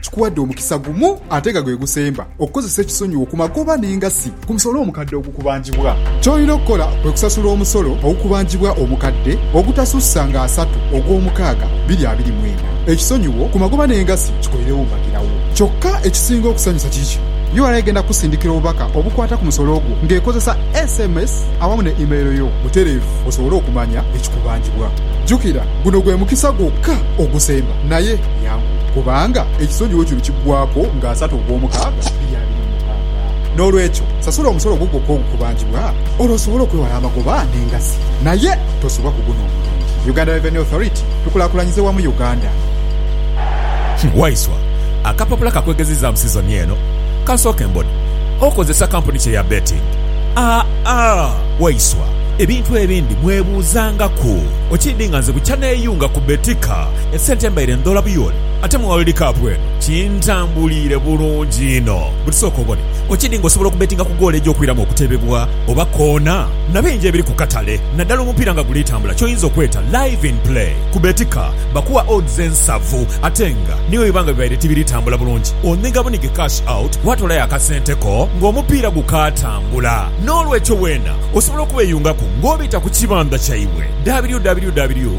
Kikuwadde omukisa gumu ate nga gwe gusemba okukozesa ekisonyiwo ku magoba n'engassi ku musolo omukadde ogukubanjibwa. Ky'olina okukola kwe kusasula omusolo ogukubanjibwa omukadde ogutasussa nga asatu ogw'omukaaga biri abiri mu ena. Ekisonyiwo ku magoba n'engassi kikolerewo mbagirawo. Kyokka ekisinga okusanyusa kiri kino, ura egenda kukusindikira obubaka obukwata ku musolo gwo ng'ekozesa sms awamu ne email yo butereevu osobole okumanya ekikubanjibwa. Jjukira, guno gwe mukisa gwokka ogusemba naye Yangu, kubanga ekisonyiwo kino kiggwaaku nga asatu ogw'omukaaga bya biri mu mukaaga. N'olwekyo, sasula omusolo gwo gwokka ogukubanjibwa olwo osobole okwewala amagoba n'engassi. Naye tosubwa ku guno omulundi. Uganda Revenue Authority, Tukulaakulanyize wamu Uganda. Waiswa, akapapula kakwegezizaamu sizoni eno? Kansooke mbone. Okozesa kampuni ki eya betting? Aa, Waiswa, ebintu ebindi mwebuuzangaku. Okiidhi nga nze bukya neeyunga ku Betika. Esente mbaire ndhoola buyoole ate mu World Cup eno kintambuliire bulungi inho. Buti sooka obone okidi nga osobola okubetinga ku goolo egy'okwiramu okutebebwa oba koona na bingi ebiri ku katale naddala omupiira nga guli tambula ky'oyinza okweta Live in Play. Ku Betika bakuwa odds ensavu ate nga ni bwe biba nga bibaire tibiri tambula bulungi onhiga bunhige cash out waatoolayo akasente ko ng'omupiira gukaatambula. N'olwekyo weena osobola okubeyungaku ng'obita ku kibandha kyaibwe www.